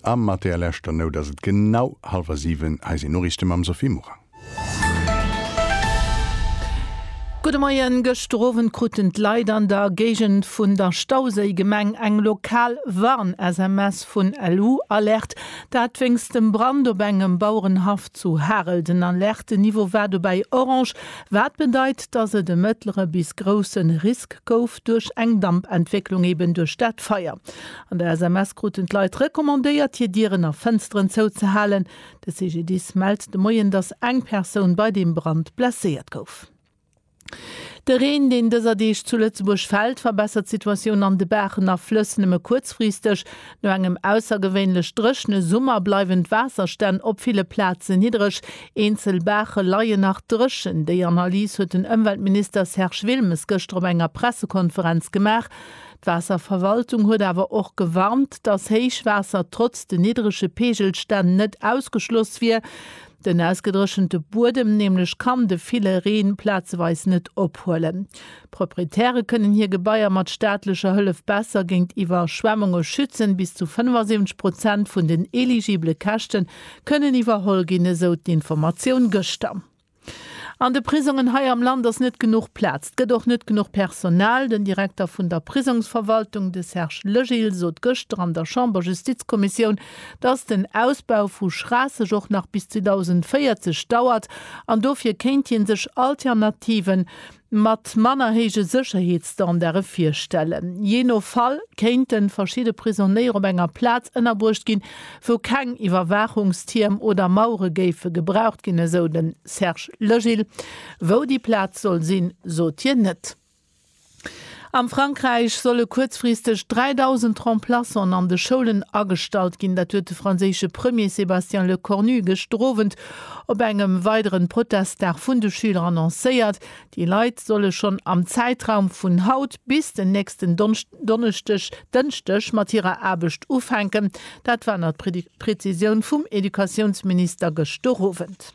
A mat där leschter Nout ass et genau hallwer siwen. Hei sinn d'Noriichte mam Sophie Morang. Gudde Moien. Gëschter Owend kruten d'Leit an der Géigend vun der Stauséigemeng eng lokal Warn-SMS vun LU Alerte. Dat wéinst dem Brand op engem Bauerenhaff zu Harel. Den Alerte-Niveau war dobäi orange, wat bedeit, dass et e mëttlere bis grousse Risk gouf. duerch eng Dampentwécklung, eben duerch dat Feier. An der SMS kruten d'Leit recommandéiert, hir Dieren a Fënsteren zouzehalen. De CGDIS mellt de Moien, dass eng Persoun bei deem Brand blesséiert gouf. De Reen, deen dëser Deeg zu Lëtzebuerg fält, verbessert d'Situatioun an de Baachen a Flëss nëmme kuerzfristeg. No engem aussergewéinlech dréchne Summer bleiwen d'Waasserstänn op ville Plaze niddreg. Eenzel Baache leien nach dréchen. Déi Analys huet den Ëmweltminister Serge Wilmes gëschter op enger Pressekonferenz gemaach. D'Waasserverwaltung huet awer och gewarnt, datt Héichwaasser trotz den niddrege Peegelstänn net ausgeschloss wier. Den ausgedréchente Buedem nämlech kann de ville Reen plazeweis net ophuelen. D'Proprietäre kënnen hir Gebaier mat staatlecher Hëllef besser géint Iwwerschwemmunge schützen. Bis zu 75 Prozent vun den eligibele Käschte kënnen iwwerholl ginn, esou d'Informatioun gëschter. An de Prisongen hei am Land ass net genuch Plaz. Et gëtt och net genuch Personal. Den Direkter vun der Prisongsverwaltung, de Serge Legil, sot gëschter an der Chamberjustizkommissioun, dass den Ausbau vu Schraasseg och nach bis 2040 dauert an dofir kéint hie sech Alternative mat manner héije Sécherheetsstandarde virstellen. Jee no Fall kéinte verschidde Prisonéier op enger Plaz ënnerbruecht ginn, wou keng Iwwerwaachungstierm oder Mauere géife gebraucht ginn, esou de Serge Legil. Wou déi Plaz soll sinn, sot hien net. Am Frankräich solle kuerzfristeg 3.000 Remplaçanten an de Schoulen agestallt ginn. Dat huet de franséische Premier Sébastien Lecornu gëschter Owend op engem weideren Protestdag vun de Schüler annoncéiert. Déi Leit solle schonn am Zäitraum vun haut bis den nächsten Donneschdeg, Dënschdeg mat hirer Aarbecht ufänken. Dat war nach d'Prezisioun vum Educatiounsminister gëschter Owend.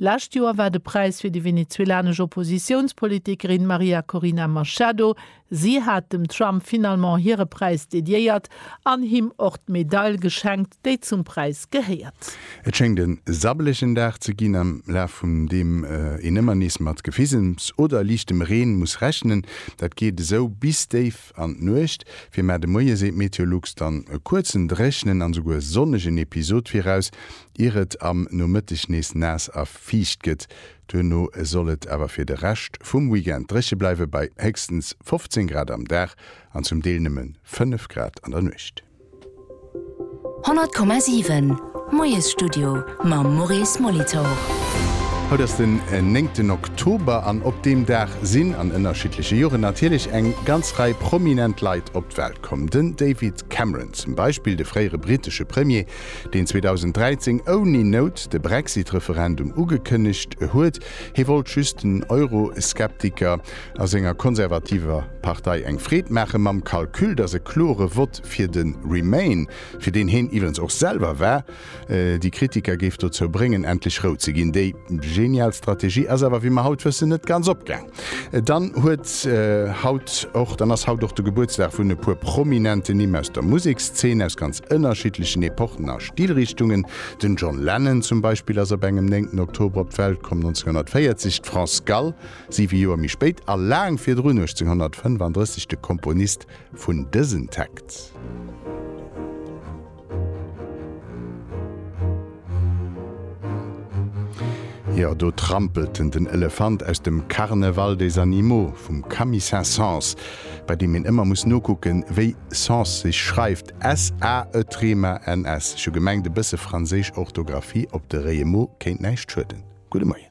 D'lescht Joer war de Präis fir déi venezuelanesch Oppositiounspolitikerin Maria Corina Machado. Si hat dem Trump finalement hire Präis dediéiert an him och d'Medail geschenkt, déi zum Präis gehéiert. Et schéngt en sabbelegen Dag ze ginn, am Laf vum deem een ëmmer nees mat Gefisems oder liichtem Reen muss rechnen. Dat geet esou bis déif an d'Nuecht fir, mä de Moie seet Meteolux dann e kuerzen dréchnen an esouguer sonnegen Episod viraus, ier et am Nomëtteg nees naass a fiicht gëtt. Duerno soll et awer fir de Rescht vum Weekend dréche bleiwe bei héchstens 15 Grad am Dag an zum Deel nëmme 5 Grad an der Nuecht. 100,7 Moiesstudio mam Maurice Molitor. Haut ass den néngten Oktober an op deem Dag sinn an ënnerschiddleche Joren natierlech eng ganz Rei prominent Leit op d'Welt komm. Den David Cameron zum Beispill, de fréiere brittesche Premier, deen 2013 ouni Nout de Brexit-Referendum ugekënnegt huet, hie wollt just den Euro-Skeptiker, a senger konservativer Partei eng Freed maachen, mam Calcul, datt e klore Vott fir de Remain, fir deen heen iwwerens och selwer war, déi Kritiker géif dozou bréngen endlech Rou ze ginn. Déi genial Strategie ass awer, wéi mer haut wëssen, net ganz opgaang. Dann huet haut och, dann ass haut och de Gebuertsdag vun e puer prominenten Nimm aus der Musekszeen, aus ganz ënnerschiddlechen Epochen a Stilrichtungen. Den John Lennon zum Beispill ass op engem 9 Oktober op d'Welt komm, 1940, d'France Gall, Siwe Joer méi spéit a laang virdrun, 1835, de Komponist vun dësen Text. Jo, do trampelt en den Elefant aus dem Carnaval des animaux vum Camille Saint-Saëns, bei deem een ëmmer muss nokucken, wéi Saëns sech schreift, S-A-E-T-R-E-M-A-N-S. Ech hu gemengt, e bësse franséisch Orthografie op de Réiemo kéint näischt schueden. Gudde Moien.